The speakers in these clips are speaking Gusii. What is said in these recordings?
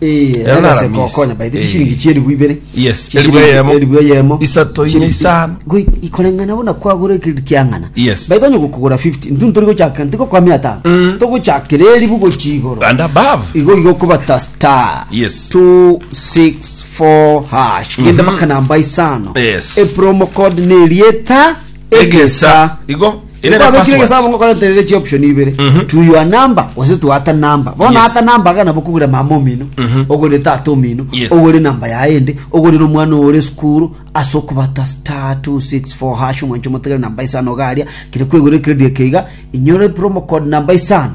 Eh, Ero ebe nara se miss. gokonya by the Eh. chishiringi chieribu ibere. Yes, Chishiringi- eribu eyemo. eribu eyemo. Isato, inye, Chiri- isano. Goi, ikoreng'ana bona kwagora ekiriri kiang'ana. Yes. By the onye gokogora 50, ntu tori gochaka ntiko kwa mia atano. Togochakera eribu gochia igoro. and above Igo igo kobata star. Yes. 264 hash. Genda baka namba isano. Yes. E promo code nerieta egesa. igo Ere na Kwabekire password. egesaabo ngokoreterere chioption ibere Mhm. to your number gose to ata number bono Yes. ata number iga nabo okogwera mama omino Mhm. ogorire tata omino Yes. ogore namba yaye ende ogorire omwana oyo ore esukuru ase okobata star 264 hash omwancho omotegere namba isano garia kere kwegorera ekeredio eke iga inyore promo code namba isano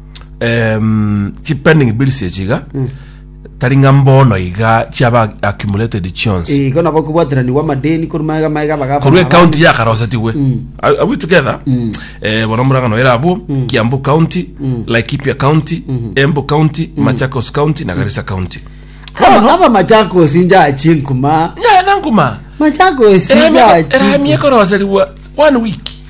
um, chi pending bills echi iga tari ng'a mbono iga chiaba accumulated chionsi Eh, igo nabo kobwateranigwa amadeni korwa maega maega bagaba korwa ekaunti yakarosetigwe Are- are we together Eh, bono omorang'ano ere abwo kiambu county laikipia county embu county machakos county na garisa county aba aba machakosi njachi nkuma nyaya nankuma machakosi njachi erami ekoroserigwa one week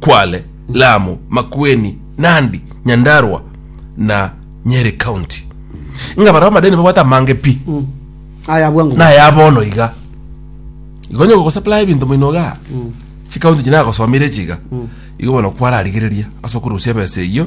Kwale, Lamu, Makueni, Nandi, Nyandarua na Nyeri County. Ng'a barabwo amadeni babwate amange pi Aya abwo ango. naya bono iga igo onye gogosaplaya ebinto moino igaa chikaunti echi nagosomire echi iga igo bono kwararigereria ase okorusia ebesa eyio